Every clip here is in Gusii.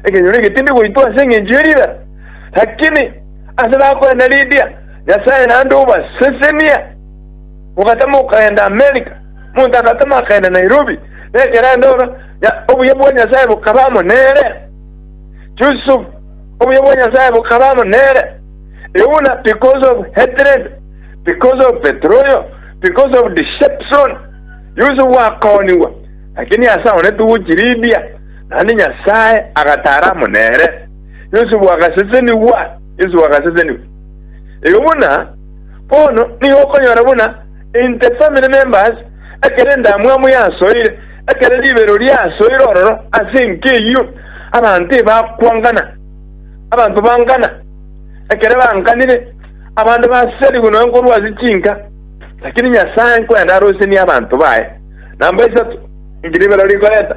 Ekenyoro egetindi goitwa ase engencho ye riira, lakini ase nakorenda Lydia, Nyasae naende obasesenia, mogatama okogenda America, omonto agatama akagenda Nairobi, na ekero aende ororo, Nya- obuya bwa Nyasae bokaba amo nere. Yusuf, obuya bwa Nyasae bokaba amo nere. Euna, because of hatred, because of betroyal, because of deception, Yusuf akoonigwa, lakini ase one togochi Lydia, naende Nyasae agataara amo nere, Yosefu agasesenigwa, Yosefu agasesenigwa. Igo buna, bono nigo okonyora buna in the family members, ekero endamwamu yasoire, ekero ribero riasoire ororo ase enka eyio, abanto ebakwangana, abanto bangana, ekero banganire, abande baserigwe nonya nkorwa ase chinka, lakini Nyasae nkoyende arosenie abanto baye, namba isato, inki ribero rikoreta?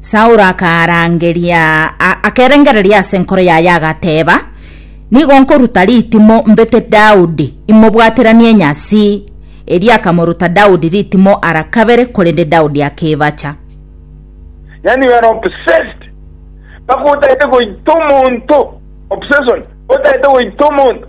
Saulo akaarangeria, akerengereria ase enkoro yaye, agateeba, Nigo nkoruta ritimo mbete Daudi, imobwateranie nyasi. Erio akamoruta Daudi ritimo ara kabere, korende Daudi akebacha. Yani you are obsessed. Mpaka otaete goita omonto. Obsession. Otaete goita omonto.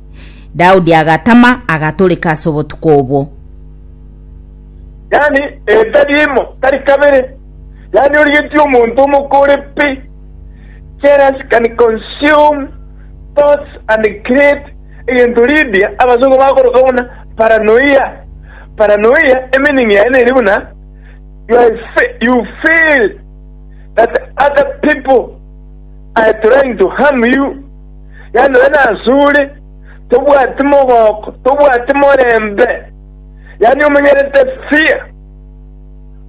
Daudi agatama, agatoreka ase obotuko obwo. Yaani etari imo, tari kabere, yaani origetie omonto omokore pi, jealous can consume thoughts and create egento Lydia abasongo bakoroka buna paranoia. Paranoia emeaning yaye neri buna you are fe- you feel that other people are trying to harm you. Yaani nonye nasure, tobwati mogoko, tobwati morembe, yaani omenyerete fear.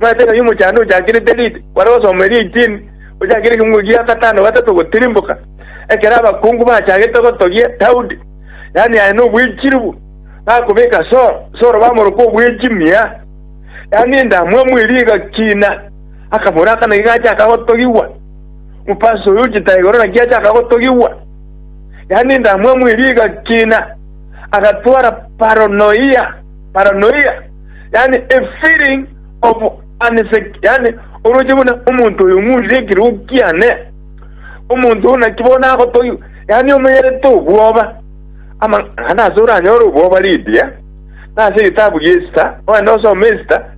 Omanyete ng'a omochando ochakirete read, kware gosoma eria eighteen, ochakire ekekungu ekia gatano gatato gotirimboka, ekero abakungu bachagete gotogia Daudi, yaani aye nobwechiribu, bakobeka Saul, Saul bamoroka obwechi mia, yaani endamwamu eria egakina, akabora aka naki gachaka gotogigwa. Omofarisai oyo ocheta igoro naki achaka gotogigwa, yaani endamwamu eria egakina, agatwara paranoia, paranoia, yaani a feeling of unsec, yaani oroche buna omonto oyo ng'urire ekiroo kiane, omonto oyo naki bono agotogigwa, yaani omenyerete obwoba. Amang'ana ase oranyore obwoba ridi, eh? Nase egetabu gia Esita, ogende osome Esita,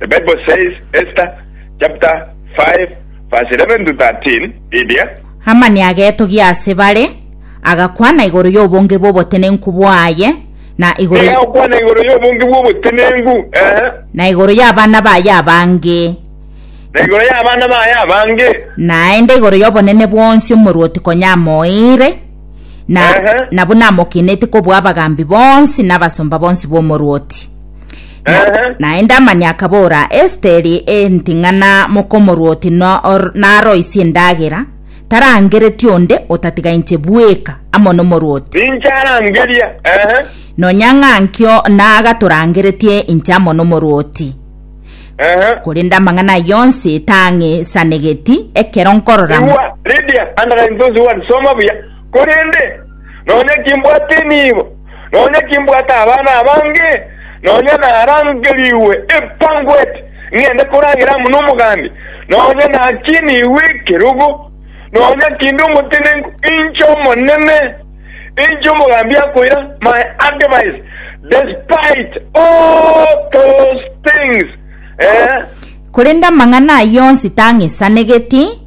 The Bible Says, Esta chapter 5 verse 11 to 13, Lydia. Hamani agetogia ase bare, agakwana igoro y'obonge bw'obotenenku bwaye, na igoro, Kera okwana igoro y'obonge bw'obotenenku, eh, na igoro y'abana baye abange, na igoro y'abana baye abange, naende igoro y'obonene bwonsi omorwoti konya amoeire, na, Ehe. na buna amokenetie kobua abagambi bonsi n'abasomba bonsi b'omorwoti. Na- Ehe. naende amani akabora esiteri enting'ana mokomorwoti no- or- naroisie endagera tarangereti onde otatiga inche bweka amo nomorwoti ninche arangeria ehe nonya ng'ankio nagatorangeretie inche amo nomorwoti ehe korende amang'ana aye onsi tang'isanegeti ekero nkorora igwa lidia andara intosi wani soma buya korende nonya kimbwate enibo, nonya kimbwate abana abange, nonya narangerigwe ebanquet ng'ende koragera amo nomogambi, nonya nakinigwe ekerogo, nonya kinde omotenenku, inche Omonene, inche omogambi akoira, my advice, despite all those things, eh, Korende amang'ana ayio onsi tang'isanegeti,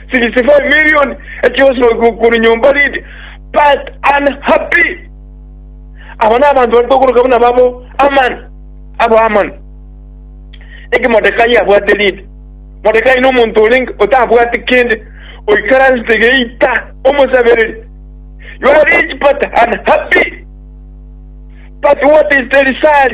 65 million echionsi korwa nyomba Lydia but unhappy aba nabanto baria tokoroka buna babo Aman abo Aman eki Modekai abwate Lydia Modekai nomonto orenge otabwati kende oikaransete geita omosabereri you are rich but unhappy but what is the result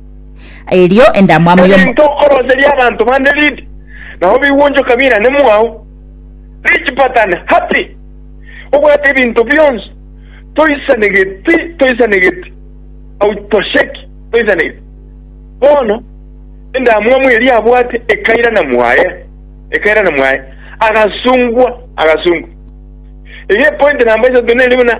Erio endamwamu Kare y'omo... ntokoroseria abanto bande ridi, nao bigwonchoka birane mwao. Rich pattern, happy, obwate ebinto bionsi, toisanegeti, toisanegeti, hautosheki, toisanegeti. Bono endamwamu eria abwate ekairana mwaye, ekairana mwaye, agasungwa, agasungwa. Eye epointi namba isato nere buna.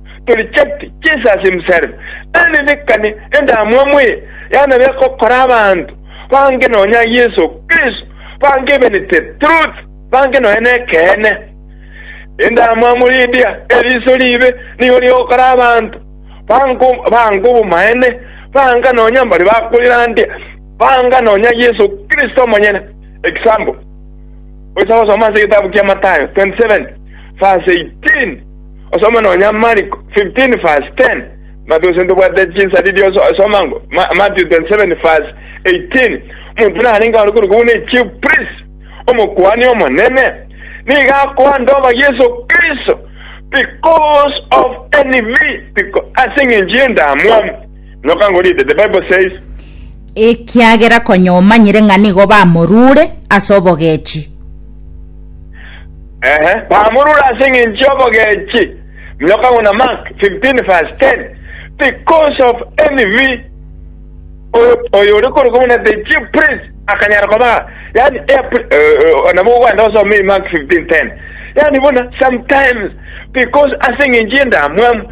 Torichabiti, Jesus himself, eririkane endamwamu eye yanabire gokora abanto bange nonya Yeso Kristo bangibenete truth bange nonya nekeene. Endamwamu ri'Dia eriso riibe nigo rigokora abanto bange obomaene banga nonya mbare bakoirandia banga nonya Yeso Kristo omonyene. Example, oisa gosoma ase egetabu kia Matayo 27 verse 18. Osoma nonya Mariko 15 verse 10, Mato ase ntobwate chisariri osoma ngo Matthew 27 verse 18, Omonto narenge ore korokwo buna echief priest, Omokuani Omonene, nigo akoanda oba Yeso Kristo, because of envy, ase engencho y'endamwamu. No can go read it. The Bible says, ekiagera konya omanyire ng'a nigo bamorure ase obogechi. ehe, bamorure ase eng'encho y'obogechi. No can go na Mark 15 verse 10. Because of envy, oyo oyo ore kore kumuna the chief priest akanyara koba yani eh, pri- eh, eh, nabo ogwanda osome Mark 15 10 yani bona sometimes because ase eng'encho y'endamwamu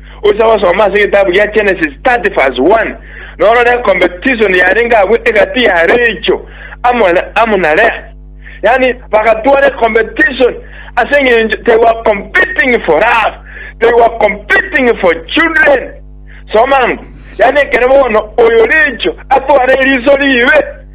Gocha gosoma ase egetabu gia Genesis 30 verse 1, na orore ecompetition yarenge agwo egati ya Rachel amo na amo na Leah. Yaani bagatwara ecompetition ase eng'encho they were competing for love, they were competing for children. Soma ang'o? Yaani ekero bono oyo Rachel atware eriso ribe,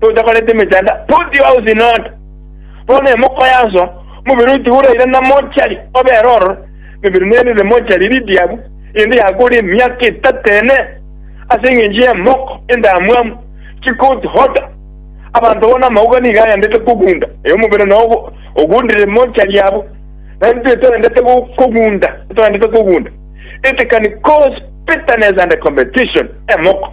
totakorete emechando, put your house in order. Bono emokoyasoa, omobere oyo tigoraira na mochari obere ororo, emebere nerire mochari eri ediabu, eyende yakore emiaka etato ene, ase engencho y'emoko endamwamu, chikut hota. Abanto bono amauga nigo aendete kogunda, ee, omobere nao ogo- ogundire mochari abo, na intwe toendete go- kogunda, toendete kogunda. It can cause bitterness and competition, emoko.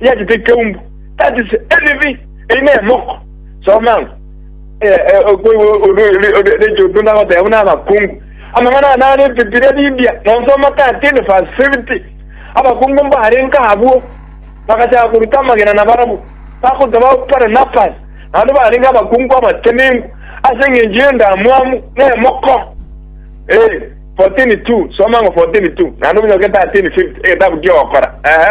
eyachete ekeumbu, that is envy, eye ne emoko. Soma ng'a eh, eh, okwe- o- o- o- o- recho otunda goteba buna abakungu amang'ana ane are ebibiria bibia nonsoma 13 verse 50 abakungu mbarenka abwo bagachaka koruta amagena na barabu bakoteba Barnabas naende barenga abakungu abatenengu ase eng'encho y'endamwamu na emoko Eh, 14:2 soma ng'a 14:2 naende obunyake 13:50 egetabu ki'ogokora ehe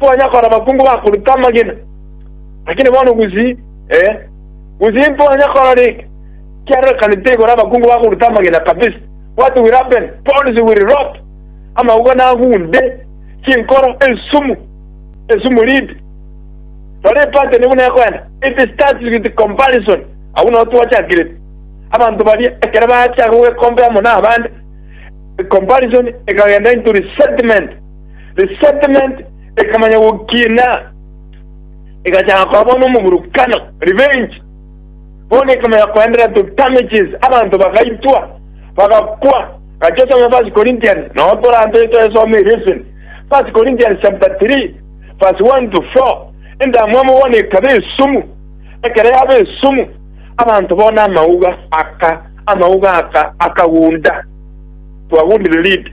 Twanya kora abakungu bakoruta amagena, lakini bono gusii, ee, gusii ntwanya kora rike, kiarorekanete igoro abakungu bakoruta amagena kabisa. What will happen? Pounds will rot, amauga nagunde, chinkoro, ensumu, ensumu ridi. Rora epateni buna ekoenda, it starts with comparison, agwo nao twachakirete. Abanto baria ekero bachaka gogekompea amo nabande, comparison ekagenda into resentment. Resentment ekamanya gokina, egachaka koba bono omoburukano, revenge. Bono ekamanya koendera to damages, abanto bagaitwa, bagakwa. Gacha osome First Corinthians, nao torantoe toesome erio eseni. First Corinthians chapter 3 verse 1 to 4, endamwamu bono ekaba esumu, ekero yaba esumu, abanto bono amauga aka, amauga aka akagunda, twagundire lead.